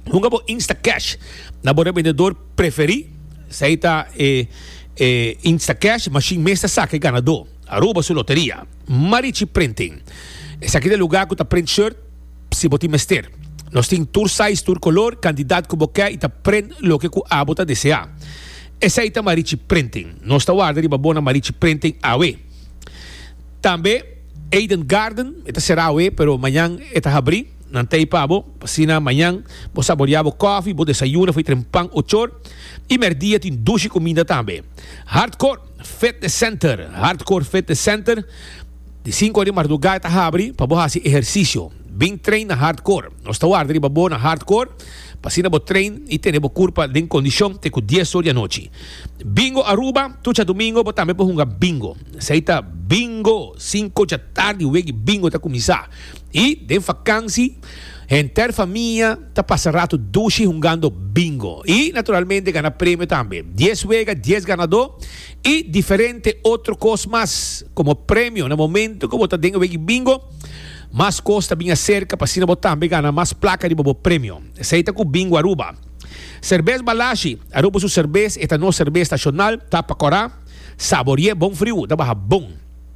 Hunga bo Instacash na bo rebendedor preferí. Esei ta e e Instacash mashin mes ta saka e ganadó. Aruba su loteria. Marichi Printing. Esaki ta e lugá ku ta print shirt si bo tin mester. Nos tin tur size, tur kolor, kandidat ku bo ke i ta print loke ku abo ta deseá. Esei ta Marichi Printing. Nos ta warda riba bo na Marichi Printing awe. Tambe Eden Garden, e ta será awe pero mañan e ta habrí. Nan ta ei pa bo, asina mañan bo saborea bo kòfi, bo desayuna fo'i tren pan o chor, i mèrdia tin dushi kuminda tambe. Hardcore Fitness Center, Hardcore Fitness Center, di sinku ora di mardugá e ta habri pa bo hasi ehersisio. Bin train na Hardcore. Nos ta warda riba bo na Hardcore, pa asina bo train i tene bo kurpa den kondishon te ku dies or di anochi. Bingo Aruba, Tucha dumingo bo tambe por hunga bingo. Esei ta bingo, sinku dja tardi wegi bingo ta kuminsá. I den fakansi henter famia ta pasa ratu dushi hungando bingo i naturalmente gana premio tambe. Dies wega, dies ganadó i diferente otro kos mas. Komo premio na momento ku bo ta den e wegi bingo mas kos ta bin aserka pa asina bo tambe gana mas plaka riba bo premio. Esei ta ku Bingo Aruba. Serbes Balashi, Aruba su serbes, e ta nos serbes nashonal, ta pa kora, saborié bon friu, ta baha bon.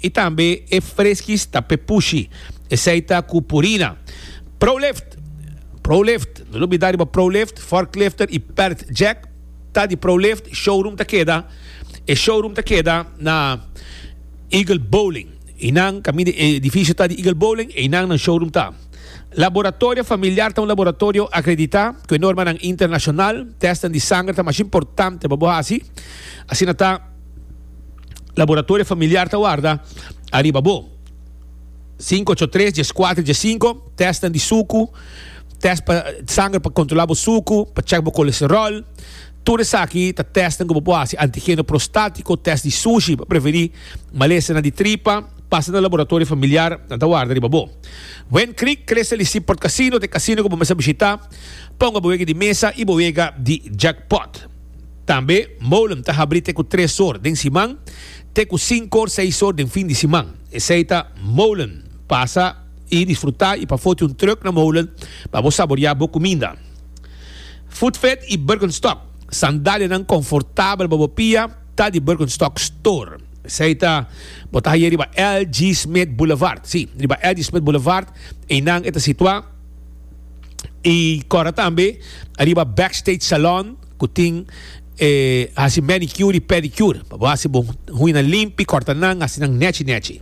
I tambe e freskis ta pepushi, esei ta ku purina. Prolift, Prolift, no lo bida riba Prolift, Forklifter i Pert Jack ta di Prolift, showroom ta keda, e showroom ta keda na Eagle Bowling, i nan kaminda di edifisio ta di Eagle Bowling einan nan showroom ta. Laboratorio Familiar ta un laboratorio akreditá ku e normanan internashonal, tèstnan di sanger ta masha importante pa bo hasi, asina ta. Laboratorio Familiar ta warda ariba bo. Sinku ocho tres, dies kuater, dies sinku, tèstnan di suku, tèst pa sanger pa kontrolá bo suku, pa chèk bo kolesteròl. Tur esaki ta tèstnan ku bo por hasi, antigeno prostátiko, tèst di sushi pa preverí malesanan di tripa. Pasa na Laboratorio Familiar, nan ta warda riba bo. Wen Creek, Crystal i Seaport Casino ta e kasino ku bo mester bishitá pa hunga bo wega di mesa i bo wega di jackpot. Tambe Moulem ta habrí te ku tres or den siman te ku sinku or, seis or den fin di siman. Esei ta Moulem, pasa i disfrutá i pa foti un truk na Moulem pa bo saboriá bo kuminda. Foodfed i Birkenstock, sandalianan konfortabel pa bo pia ta di Birkenstock Store. Esei ta Bo ta hañ'é riba LG Smith Boulevard, sí, riba LG Smith Boulevard einan e ta situá i kòrda tambe riba Backstage Salon. ku tin e hasi manicure i pedicure pa bo hasi bo huina limpi, kòrta nan, hasi nan nèchi nèchi.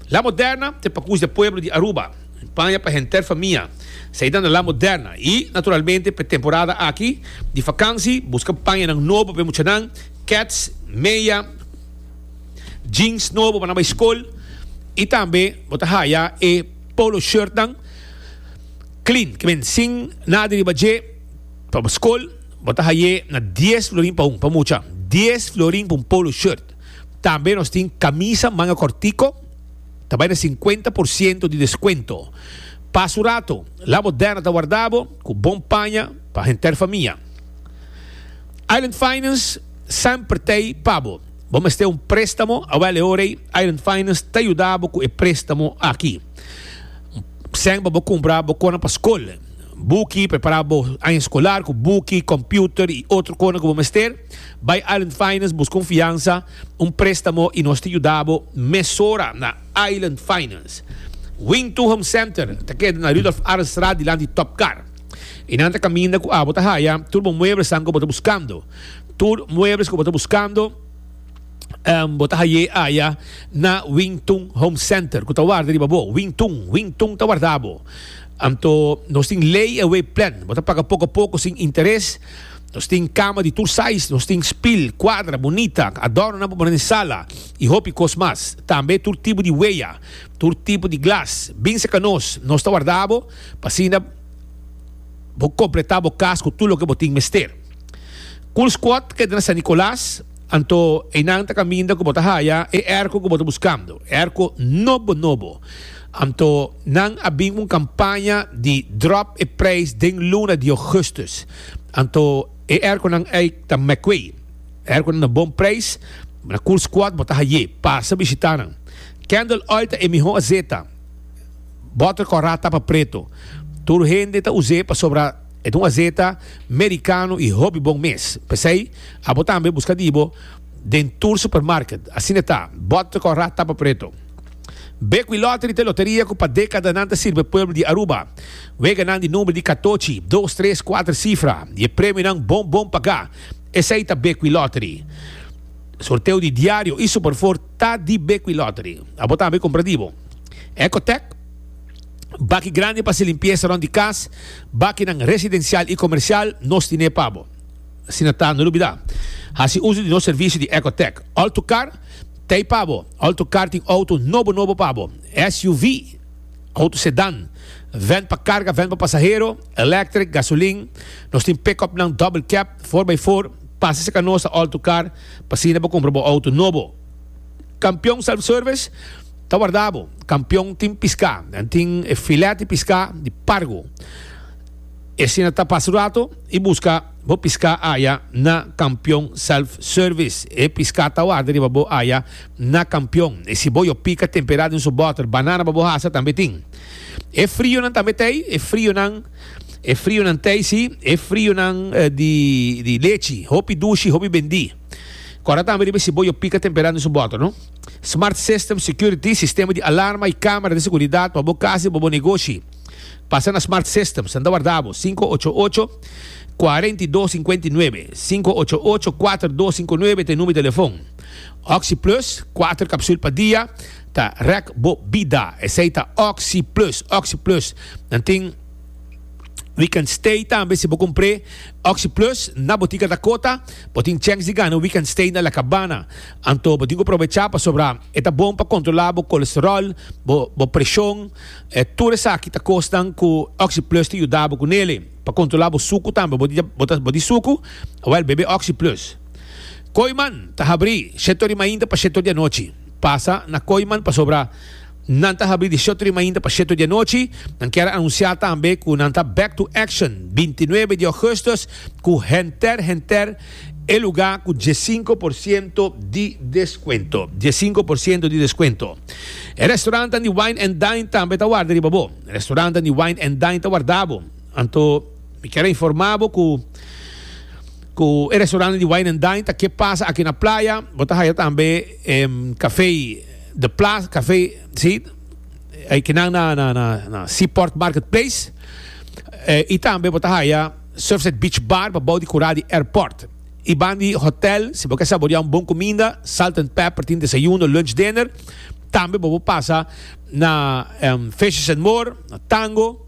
La Moderna ta e pakus di pueblo di Aruba, paña pa henter famia, saida na La Moderna i, naturalmente, pa e temporada aki di fakansi buska pañanan nobo pa e muchanan, kèts, meya, jeans nobo pa nan bai skol i tambe bo ta haya e polo shirtnan klin, ku a bin sin nada riba dje. Pa bo skol, bo ta haye na dies florin pa un pa mucha, dies florin pa un polo shirt. Tambe nos tin camisa manga cortico, ta bay na cincuenta por ciento di descuento. Pas un rato, la bo derna ta warda bo cu bon paña pa henter famia. Island Finance semper ta ey pa bo. Bo mester un prestamo? Awel e orey Island Finance ta yuda bo cu e prestamo aki. Sen pa bo cumpra bo conan pa skol. Buki, Prepara bo aña skolar ku buki, kompiuter i otro kona ku bo mester. Bai Island Finance buska un fiansa, un préstamo i nos ta yuda bo mesora na Island Finance. Wing To Home Center ta keda na Rudolf Arenstraat dilanti Top Car i nan ta kaminda ku abo ta haya tur bo mueblesan ku bo ta buskando. Tur muebles ku bo ta buskando bo ta hay'é aya na Wing To Home Center ku ta warda riba bo. Wing To, Wing To ta warda bo. Anto nos tin layaway plan, bo ta paga poko poko sin interes. Nos tin kama di tur size, nos tin spil, kuadra, bunita, adornonan pa pone den sala i hopi kos mas. Tambe tur tipo di weya, tur tipo di glas. Bin serka nos, nos ta warda bo pa asina bo kompletá bo kas ku tur loke bo tin mester. Cool Squad ta keda na San Nicolas. Anto einan ta caminda cu bo ta haya e erco cu bo ta buscando, erco nobo nobo. Anto nan a bin un campaña di drop e prijs den luna di augustus. Anto e erconan ey ta mekwe. Erconan na bon prijs, na cool squad bo ta haye. Pasa bishita nan. Kendall Oil ta e miho azeta. Botter corra tapa preto. Tur hende ta uze pasobra. E ta un azeta mericano y hopi bon mes. P'esey, abo tambe busca di bo den tur supermarket. Asina ta, bot te corra tapa preto. Bequi Lottery ta e loteria cu pa decadanan ta sirbe pueblo di Aruba. Weganan di number di catochi, dos, tres, cuater cifra y e premionan bon bon paga. Esey ta Bequi Lottery. Sorteo di diario y Superfour ta di Bequi Lottery. Abo tambe compra di bo Ecotec. Baki grandi pa hasi limpiesa rond di kas, bakinan residensial i komersial, nos tine pa bo. Asina ta, no lubidá, hasi uso di nos servisio di Ecotec. Altocar t'ei pa bo. Altocar tin outo nobo nobo pa bo, SUV, outo sedan, vèn pa karga, vèn pa pasahero, elèktrik, gasolin. Nos tin pick-upnan double cab, for by for. Pasa serka nos ta Altocar pa asina bo kumpra bo outo nobo. Kampion Self Service. Ta warda bo, kampion tin piská, nan tin e filèt di piská di pargo. E asina ta pasa rato i buska bo piská aya na Kampion Self Service. E piská ta warda riba bo aya na Kampion. E siboyo pika temperá den su bòter, banana pa bo hasa tambe tin. E frionan tambe t'ei, e frionan, e frionan t'ei sí, e frionan di di lechi, hopi dushi, hopi bendí. Kòrda tambe riba e siboyo pika temperá den su bòter, no. Smart System Security, sistema di alarma y camera di seguridad pa bo casa y pa bo negoshi. Pasa na Smart System, sa nta warda bo, sinku ocho ocho, kuarenta i dos, sinkuenta i nuebe, sinku ocho ocho, kuater dos, sinku nuebe ta e number di telefon. Oxi Plus, kuater kapsul pa dia, ta rek bo bida. Esei ta Oxi Plus. Oxi Plus nan tin Weekend Stay tambe. Si bo kumpr'e Oxi Plus na botika Dakota, bo tin chèns di gana Weekend Stay na La Cabana. Anto bo tin ku probechá pasobra e ta bon pa kontrolá bo kolesteròl, bo bo preshon. E tur esaki ta kosnan ku OxyPlus ta yuda bo ku nele. Pa kontrolá bo suku tambe, bo di bo ta bo di suku? Wèl, bebe OxyPlus. Koiman ta habrí shèt'or di mainta pa shèt'or di anochi. Pasa na Koiman pasobra nan ta habrí di shèt'or di mainta pa shèt'or di anochi. Nan kier a anunsiá tambe ku nan ta back to action binti nuebe di ògùstus ku henter henter. E lugá ku dies sinku por siento di deskuento. Dies sinku por siento di deskuento. E restorantan di Wine and Dine tambe ta warda riba bo. E restorantan di Wine and Dine ta warda bo. Anto mi kier a informá bo ku ku e restorantan di Wine and Dine ta ke pasa aki na playa. Bo ta haya tambe e Café de Plaza, Café, si, e kinan na Seaport Marketplace. I tambe bo ta haya. Surfside Beach Bar pa bou di kurá di airport. I ban di hotel, si bo ke saboreá un bon kuminda, Salt and Pepper tin desayuno, lunch, dinner. Tambe bo por pasa na Fishes and More, na Tango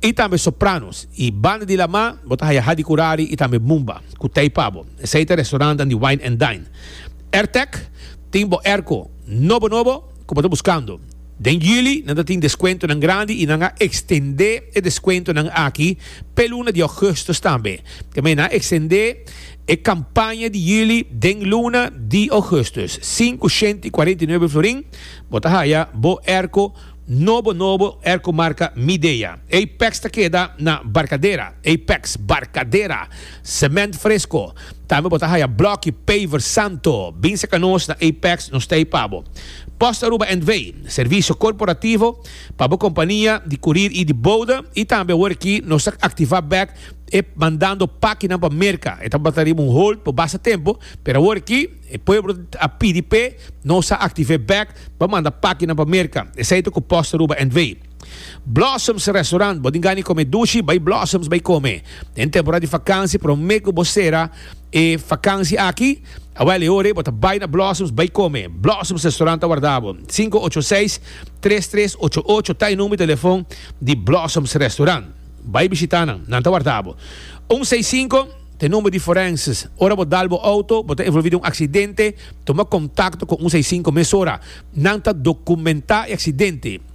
i tambe Sopranos. I banda di lamá bo ta haya Hadi Kurari i tambe Mumba ku tei pa bo. Esei ta restaurantnan di wine and dine. Airtech tin bo airco nobo nobo ku bo ta buskando. Den juli nan ta tin deskuentonan grandi i nan a ekstendé e deskuentonan aki p'e luna di ougùstus tambe. Temei nan a ekstendé e kampaña di juli den luna di ougùstus. Sinku shent i kuarenta i nuebe florin bo ta haya bo erko nobo nobo erko marka Midea. Apex ta keda na Barkadera, Apex, Barkadera. Cement fresco. Tambe bo ta haya blokki paver santo. Bin seca nos na Apex, nos ta ey pa bo. Post Aruba NV. Servicio corporativo pa bo compania di curir y di bode y tambe awor aki nos ta activa bek e mandando paki nan pa Merca. E tabata riba un hold por basta tempo, pero awor aki e pueblo a pidi p'e, nos a activé bek pa manda paki nan pa Merca. Esey ta cu Post Aruba NV. Blossoms Restaurant, bo tin gana di come dushi, bay Blossoms bay come. Den temporada di vakantie prome cu bo cera e vakantie aki, awel e ora bo ta bay na Blossoms bay come. Blossoms Restaurant ta warda bo. Sinku ocho seis, tres tres ocho ocho ta e number di telefon di Blossoms Restaurant. Bay bishita nan, nan ta warda bo. Un seis sinku ta e number di forenses. Ora bo dal bo auto, bo ta envolvi di un accidente, tuma contacto cu un seis sinku mesora. Nan ta documenta e accidente.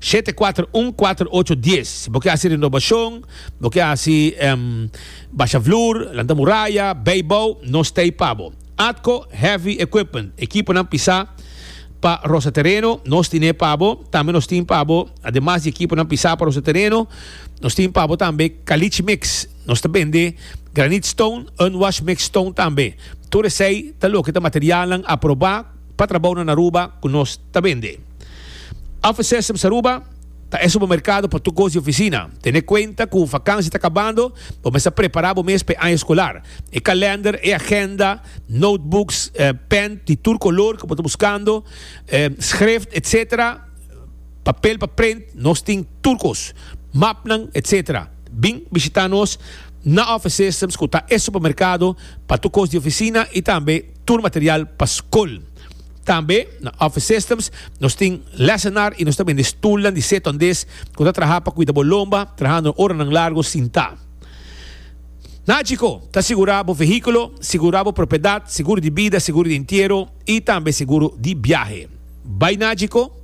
Shete kuater un kuater ocho dies si bo ke hasi renobashon bo ke hasi basha vloer lanta muraya beibou no stay pa bo atco heavy equipment ekiponan pisa pa rosa tereno nos tine pa bo tambe nos tin pa bo ademas di ekiponan pisa pa rosa tereno nos tin pa bo tambe caliche mix nos ta bende granite stone unwash mix stone tambe tur esey ta loke ta materialnan aproba pa trabounan Aruba cu nos ta bende. Offices op Aruba ta e supermerkado pa tur kos di ofisina. Tene kuenta ku vakansi ta kabando, bo mester prepará bo mes pa e aña eskolar. E kalènder, e agenda, notebooks, pèn di tur kolor ku bo ta buskando, skrift, etsetera, papel pa print, nos tin tur kos, mapnan, etsetera. Bin bishitá nos na Office Systems ku ta e supermerkado pa tur kos di ofisina i tambe tur material pa skol. Tambe na Office Systems nos tin lesenar y nos ta bende stulnan di seto andes cu ta traha pa cuida bo lomba trahando oranan largo sintá. Na Chico ta sigura bo vehiculo, sigura bo propiedad, seguro di bida, seguro di entiero y tambe seguro di biahe. Bay na Chico,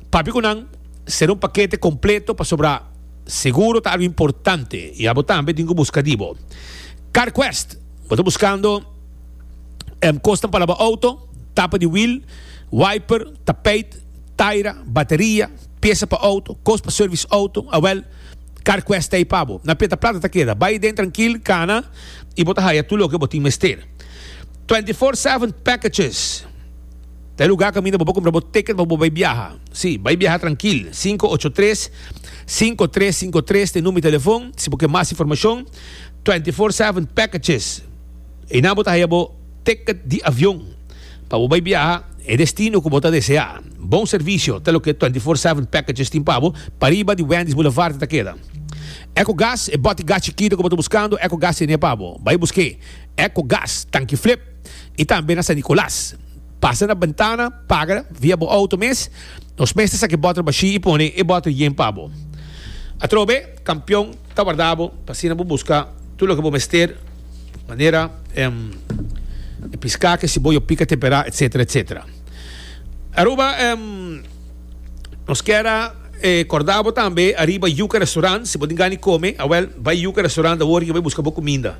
papia cu nan, sera un pakete completo pasobra seguro ta algo importante y abo tambe tin cu busca di bo. Carquest, bo ta buscando. Em kos ta palabra auto, tapa di wiel, wiper, tapijt, taira, bateria, piesa pa auto, kos pa service auto, awel, Carquest ta ei pa bo. Na peta plata ta keda. Bai den trankil, kana i bo ta haya tur loke bo tin mester. 24/7 Packages ta e lugar kaminda bo por kumpra bo ticket pa bo bai biaha. Si, bai biaha trankil. Sinku ocho tres, sinku tres sinku tres ta e number di telefon si bo ke mas informashon. 24/7 Packages. Eina bo ta haya bo ticket di avion pa bo bai biaha e destino ku bo ta desea. Bon servisio ta loke Twenty Four Seven Packages tin pa bo. Pariba di Wendy's Boulevard e ta keda. Ecogas, e boti gas chikito ku bo ta buskando, Ecogas tene pa bo. Bai busk'é. Ecogas, Tanki Flip i tambe na San Nicolas. Pasa na bentana, paga via bo outo mes. Nos mes ta saka e bot'er bashí i pone e bot'er yen pa bo. Atrobe. Campeon ta warda bo pa asina bo busca tur loke bo mester manera e pisca ke siboyo pica tempera etc etc. Aruba nos kier a corda bo tambe ariba Yuca Restaurant si bo tin gani come awel bay Yuca Restaurant awor riba y busca bo cuminda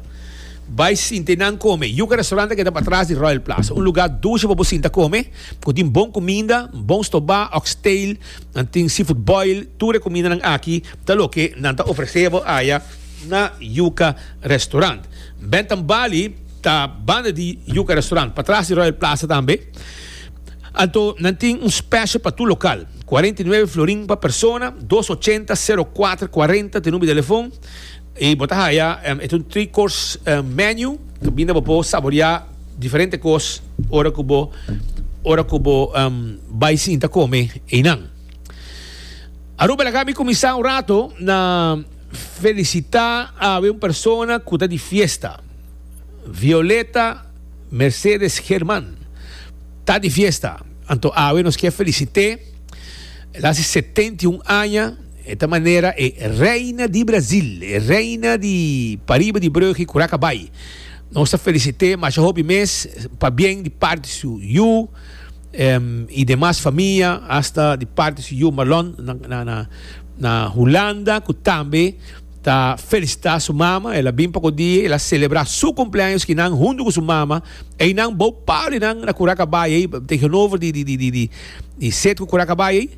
bay sinte nan come Yuca Restaurant ta keda pa atras di Royal Plaza un lugar dushi pa bo sinta come cu tin bon cuminda bon stoba oxtail. Nan tin seafood boil, tur recomindanan aki ta loke nan ta ofrece bo aya na Yuca Restaurant. Bentham Bali ta banda di Yuca Restaurant, patras di Royal Plaza tambe. Anto nan tin un special pa tur local, cuarenta y nueve florin pa persona, dos ochenta sero cuater cuarenta te number di telefon. Y bo ta haya e tur three course menu ta binda bo por saborea diferente cos ora cu bo ora cu bo bay sinta come eynan. Aruba laga mi cuminsa un rato na felicita awe un persona cu ta di fiesta. Violeta Mercedes German ta di fiesta. Anto awe nos kier felicite el haci setenta y un aña. E ta manera e Reina di Brasil, e Reina di pariba di Brugge y Curaca bay. Nos ta felicite masha hopi mes pa bien di parti su yu y demas famia, hasta di parti su yu Marlon na Hulanda cu tambe ta felicita su mama. El a bin pa codi el a celebra su cumpleaños ki nan hunto cu su mama. Eynan bao paro di nan na Curaca bay ey tegenover di set cu Curaca bay ey.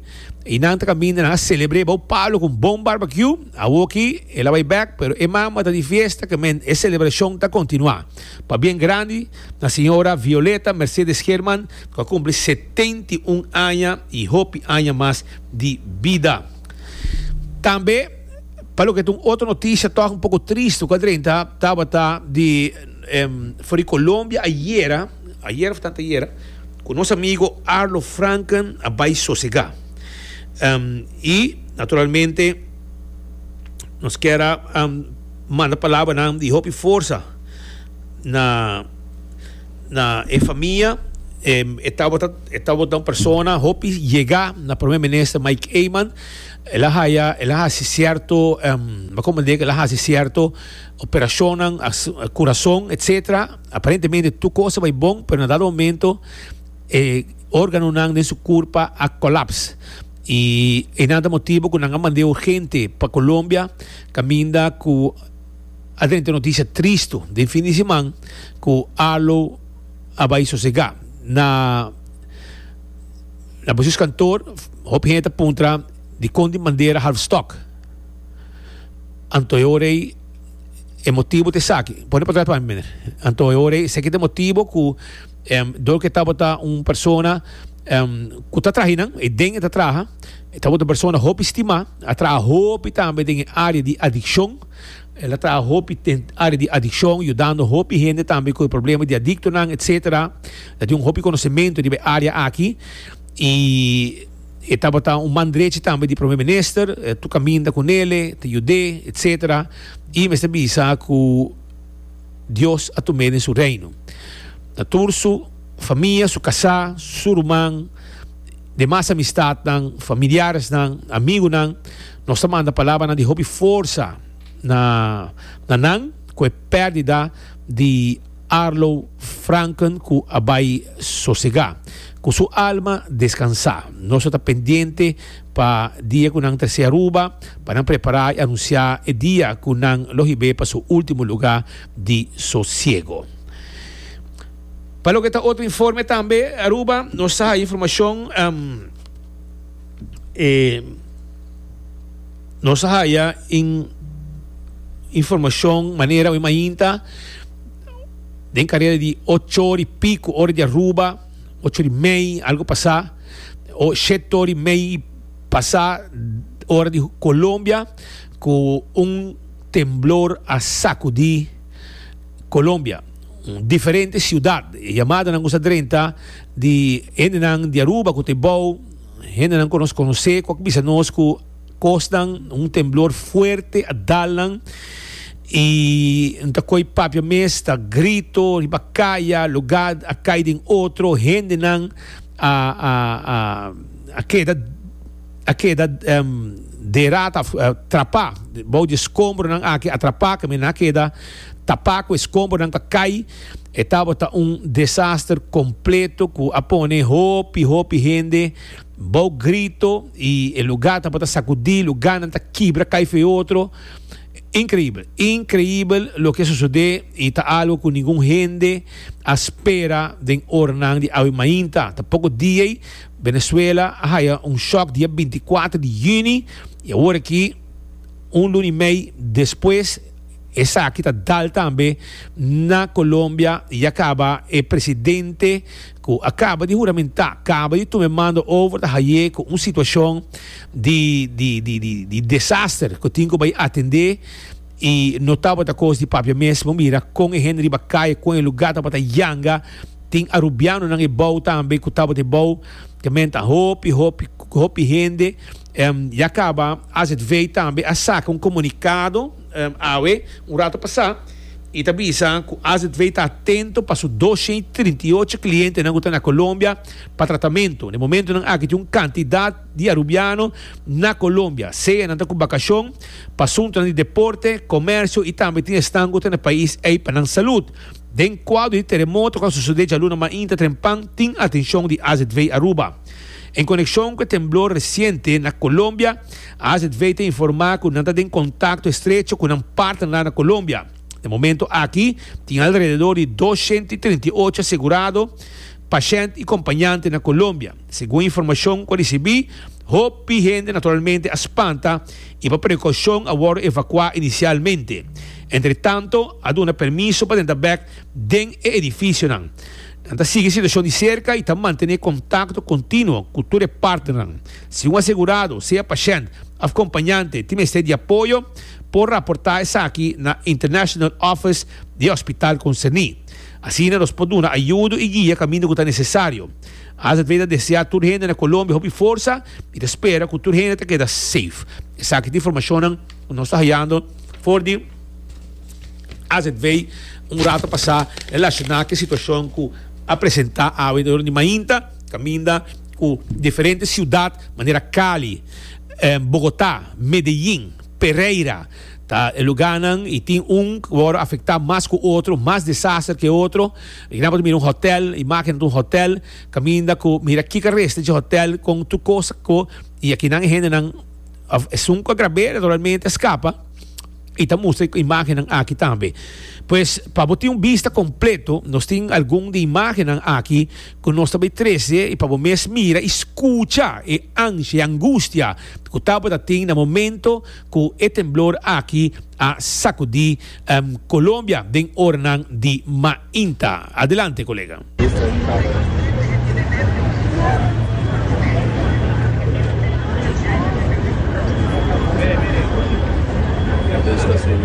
y nan ta caminda nan a celebre bou palo con bon barbecue awor ki el a bay bek pero e mama ta di fiesta que men e celebracion ta continua pa bien grandi na señora Violeta Mercedes German cu a cumpli setenta y un aña y hopi aña mas di bida tambe pa loke ta un otro noticia toch un poco triste cu a drenta tabata di for di Colombia ayera. Ayer of tanta ayer cu nos amigo Arlo Franken a bay sosega. Um, y naturalmente nos quiera um, manda palabranan di hopi forza na na e famia. Um, e tabata e tabata un persona hopi yega na primer minister Mike Eman. El a haya el a hasi cierto um, ba como dice el a hasi cierto operacionnan, as- corazon, etcetera. Aparentemente tur cos a bay bon, pero na dado momento e organonan den su curpa a colaps y enan ta motibo cu nan a mande urgente pa Colombia caminda cu a drenta un noticia tristo den fin di siman cu Arlo a bay sosega. Na na Bucios Kantoor hopi hende ta puntra dicon di manera half stock anto e ora ey. E motibu ta esaki. Pone pa trata pa mi, meneer. Anto e ora esaki ta e motibu ku em, dor ku e tabata un persona em, ku ta traha hinan, e den e ta traha, e tabata un persona hopi stimá, a traha hopi tambe den e área di adikshon. El a traha hopi den área di adikshon, yudando hopi hende tambe ku e problema di adiktonan, etsetera. El a tin un hopi konosimentu riba e área aki. I. E tabata un man drechi tambe di Prome Minister, e tur kaminda ku nele, ta yud'é, etc. I mester bisa ku Dios a tum'é den su Reino. Na tur su famia, su kasá, su ruman, demas amistatnan, familiaresnan, amigunan, nos ta manda palabranan di hopi forsa na nan ku e pèrdida di. Arlo Franken cu a bay sosega, cu su alma descansa. Nos lo ta pendiente pa dia cu nan trece Aruba pa nan prepara y anuncia e dia cu nan lo hibe pa su ultimo luga di sosiego. Pa loke ta otro informe tambe Aruba nos ta haya informacion e. Nos a haya in informacion manera oe mainta den carera di ocho ora y pico, ora di Aruba, ocho ora y mei algo pasa, o shete ora y mei y pasa ora di Colombia cu un temblor a sacudi Colombia. Un diferente ciudad. E yamadanan cu sa drenta di hendenan di Aruba cu ta e bao, hendenan cu nos conoce cu a bisa nos cu. Kosnan, un temblor fuerte a dalnan y no ta koy papia mes, ta grito riba kaya, lugá a kai den otro, hendenan a keda a keda derata of trapá bou di e skombronan aki, a trapá caminda a keda tapá cu e skombronan ta kai, e tabata un desaster completo cu a pone hopi hopi hende. Bou grito y e lugar ta por ta sacudi, lugarnan ta kibra cay feo otro, increibel, increibel loke a sucede y ta algo cu ningun hende a spera den oranan di awe mainta. Ta poco dia ey Venezuela a haya un shock dia binti kuater di Juni y awor aki un luna y mey despues esaki ta dal tambe na Colombia y ya caba e presidente. cu a caba di huramenta, caba di tuma e mando over ta haye cu un situacion di di desaster cu tin cu bay atende y no tabata cos di papia mes. Bo mira con e hende riba caye, con e lugar tabata yanga, tin Arubianonan ebao tambe cu tabata ebao, te menta hopi, hopi, hopi hende. Ya caba, azv tambe a saca un comunicado. Awe, un rato pasá, i ta bisa ku AZV ta atento pa su dos shei trinta i ocho klientenan ku ta na Colombia pa tratamentu. Na e momentunan aki tin un kantidat di Arubiano na Colombia, sea nan ta ku bakashon, pa suntunan di deporte, komersio i tambe tin esnan ku ta na e pais ei pa nan salut. Den kuadro di teremoto ku a sosodé djaluna mainta trempan tin atenshon di AZV Aruba. En konekshon ku e temblor resiente na Colombia, AZV ta informá ku nan ta den kontakto estrecho ku nan partnernan na Colombia. Den momento aki tin alrededor di dos shent i trinta i ocho asegurado, pashènt i kompañante na Colombia. Segun informashon ku a risibí, hopi hende naturalmente a spanta i pa prekoushon a wòrdu evakuá inisialmente. Entretanto, a duna permiso pa drenta bèk den e edifisionan. Nan ta sigui e situashon di serka i ta mantené kontakto kontinuo ku tur e partnernan, Si un asegurado, sea pashènt òf kompañante, tin mester di apoyo, por raportá esaki na International Office di e hospital konserní. Asina nos por duna ayudo i guia kaminda ku ta nesesario. AZV ta deseá tur hende na Colombia hopi forsa i ta spera ku tur hende ta keda safe. Esaki ta informashonnan ku nos ta hayando for di AZV un rato pasá, relashoná ku e situashon ku a presentá awe dor di mainta kaminda. cu diferente ciudad manera Cali, Bogota, Medeyin, Pereira ta e lugarnan y tin un worde afecta mas cu otro, mas desaster que otro. Aquí nan bo ta mira un hotel, imagen ta un hotel, caminda cu mira kico a resta dje hotel con tur cosa cu y aquí nan e hendenan of esun cu a grab'e naturalmente a scapa y ta mustra e imagennan aki tambe. Pues pa bo tin un bista completo nos tin algun di imagennan aki. ku nos ta bay trese i pa bo mes mira i skucha e anshi, e angustia ku tabata tin na momento ku e temblor aki a sakudi Colombia den oranan di mainta. Adelante kolega.